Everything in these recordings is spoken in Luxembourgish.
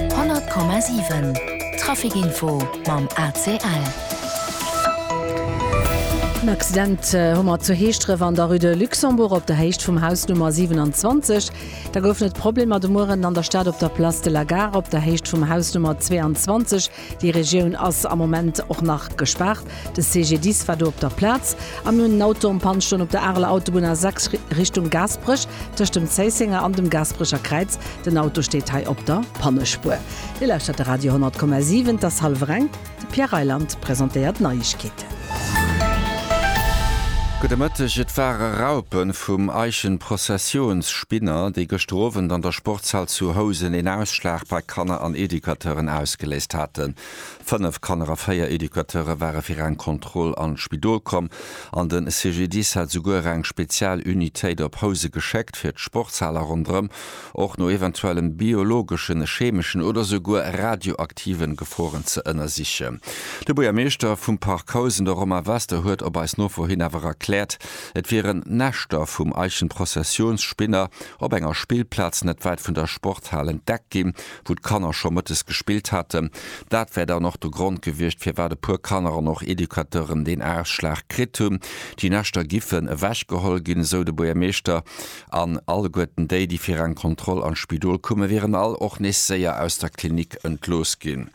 100,7 Traficinfo mam ACL. En Accident hu mer zu Heeschdref an der Rue de Luxembourg op der Héicht vum Haus Nummer 27. Da goufen et Problemer de Mueren an der Stad op der Place de la Gare op der Héicht vum Haus Nummer 22. Déi Regioun ass am Moment och nach gespaart. De CGDIS war do op der Plaz a mir hunn en Auto en Panne stoen op der Areler Autobunn A6 Richtung Gaasperech, tëscht dem Zéissenger an dem Gaasperecher Kräiz. Den Auto steet hei op der Pannespuer. Dir lauschtert de Radio 100,7. Et ass hallwer eng. De Pierre Reyland presentéiert d'Neiegkeeten. Gudde Mëtteg, et ware Raupe vum Eichenprozessionsspinner, déi gëschter Owend an der Sportshal zu Housen een Ausschlag bei Kanner an Educateuren ausgeléist haten. Fënnef Kanner a véier Educateure ware fir eng Kontroll an d'Spidol komm an de CGDIS hat esouguer eng Spezialunitéit op Housen geschéckt, fir d'Sportshal a ronderëm och no eventuellen biologeschen, chemeschen oder souguer radioaktiven Geforen ze ënnersichen. De Buergermeeschter vum Park Housen, de Romain Wester, huet op eis Nofro hin awer erkläert, et wieren Näschter vum Eichenprozessionsspinner op enger Spillplaz net wäit vun der Sporthal entdeckt ginn, wou d'Kanner scho mëttes gespillt haten. Dat wär dann och de Grond gewiescht, firwat e puer Kanner an och Educateuren deen Ausschlag kritt hunn. Déi Näschter giffen ewechgeholl ginn, esou de Buergermeeschter. An alleguerten déi, déi fir eng Kontroll an d'Spidol kumen, wieren all och nees séier aus der Klinik entlooss ginn.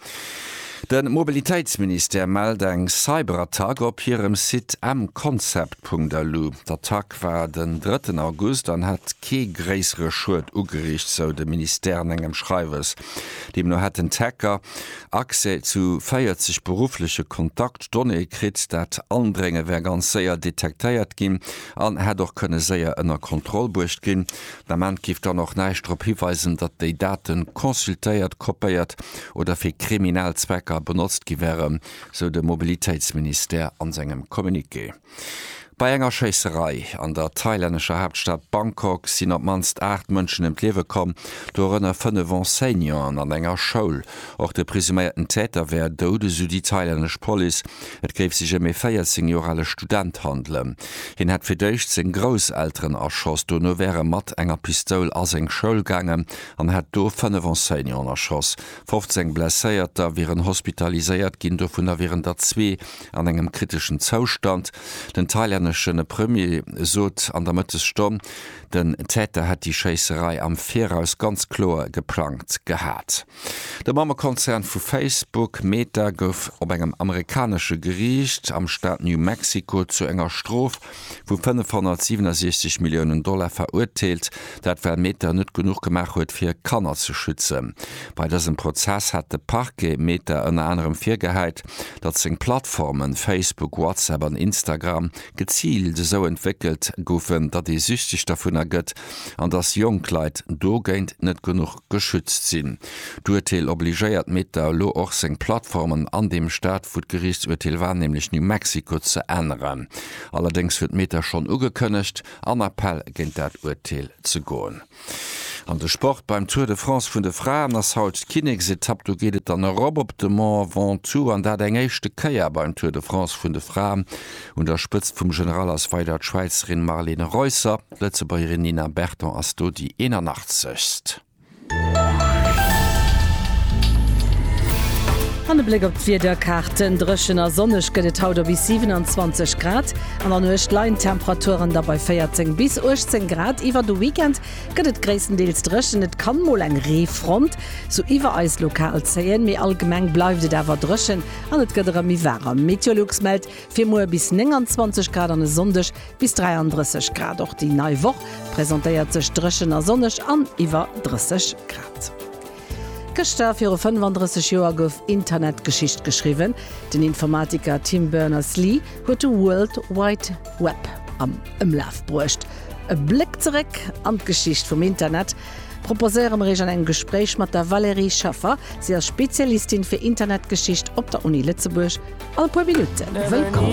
De Mobilitéitsministère mellt eng Cyberattack op hirem Site mconcept.lu. D'Attack war den drëtten August an hätt kee gréissere Schued ugeriicht, sou de Ministère an engem Schreiwes. Deemno hätten d'Hacker Accès zu 40 beruffleche Kontaktdonnéeë kritt. Dat Andrénge wär ganz séier detektéiert ginn. an hätt och kënne séier ënner Kontroll bruecht ginn. Den Ament géif dann och näischt drop hiweisen, datt déi Date consultéiert, kopéiert oder fir kriminell Zwecker benotzt gi wären, sou de Mobilitéitsministère an sengem Communiqué. Bei enger Schéisserei an der thailännescher Haaptstad Bangkok sinn op d'mannst 8 Mënschen ëm d'Liewe komm, dorënner 5 Enseignanten an enger Schoul. Och de presuméierten Täter wär dout, esou déi thailännesch Police. Et géif sech ëm ee 14 Joer ale Student handelen. Hien hätt fir d'éischt seng Grousselteren erschoss, dono wär e mat enger Pistoul a seng Schoul gaangen an hätt do fënnef Enseignanten erschoss. 15 Blesséierter wieren hospitaliséiert ginn, dovunner wieren der zwee an engem kriteschen Zoustand. Den thailännesche Premier sot an der Mëttesstonn, Den Täter hätt déi Schéisserei am Viraus ganz kloer geplangt gehat. De Mammekonzern vu Facebook, Meta, gouf op engem amerikanesche Geriicht am Staat New Mexico zu enger Strof vu 567 Milliounen Dollar verurteelt. Dat well Meta net genuch gemaach huet fir Kanner ze schützen. Bei dësem Prozess hat de Parquet Meta ënner anerem virgehäit, datt seng Plattformen, Facebook, WhatsApp an Instagram, geziilt esou entwéckelt goufen, datt ee süchteg dervunner gëtt an datt jonk Leit dogéint net genuch geschützt sinn. D'Urteel obligéiert Meta elo och seng Plattformen an deem Staat wou d'Geriichtsurteel war, nämlech New Mexico, ze änneren. Allerdéngs huet Meta schonn ugekënnegt, an Appell géint dat Urteel ze goen. An de Sport, Beim Tour de France vun de Fraen ass haut d'Kinneksetapp. Do geet et dann erop op de Mont Ventoux an dat eng éischte Kéier beim Tour de France vun de Fraen. Un der Spëtzt vum General ass weider d'Schwäizerin Marlene Reusser. D'Lëtzebuergerin Nina Berton ass do déi 81. An e Bléck op d'Wiederkaarten, Dréchen a sonneg gëtt et haut op bis 27 Grad. An der Nuecht leien d'Temperaturen da bei 14 bis 18 Grad. Iwwer de Weekend gëtt et gréisstendeels dréchen, et kann mol eng Reefront sou iwwer eis lokal zéien, mee allgemeng bleift et awer dréchen an et gëtt erëm méi waarem. Meteolux mellt fir muer bis 29 Grad an e Sonndeg bis 33 Grad. Och déi nei Woch presentéiert sech dréchen a sonneg an iwwer 30 Grad. Gëschter viru 35 Joer gouf Internetgeschicht geschriwwen, Den Informatiker Tim Berners-Lee huet de World Wide Web am Ëmlaf bruecht. E Bléck zeréck an d'Geschicht vum Internet proposéiere mer Iech an engem Gespréich mat der Valérie Schaffer. Si ass Spezialistin fir Internetgeschicht op der Uni Lëtzebuerg. All puer Minutte wëllkomm.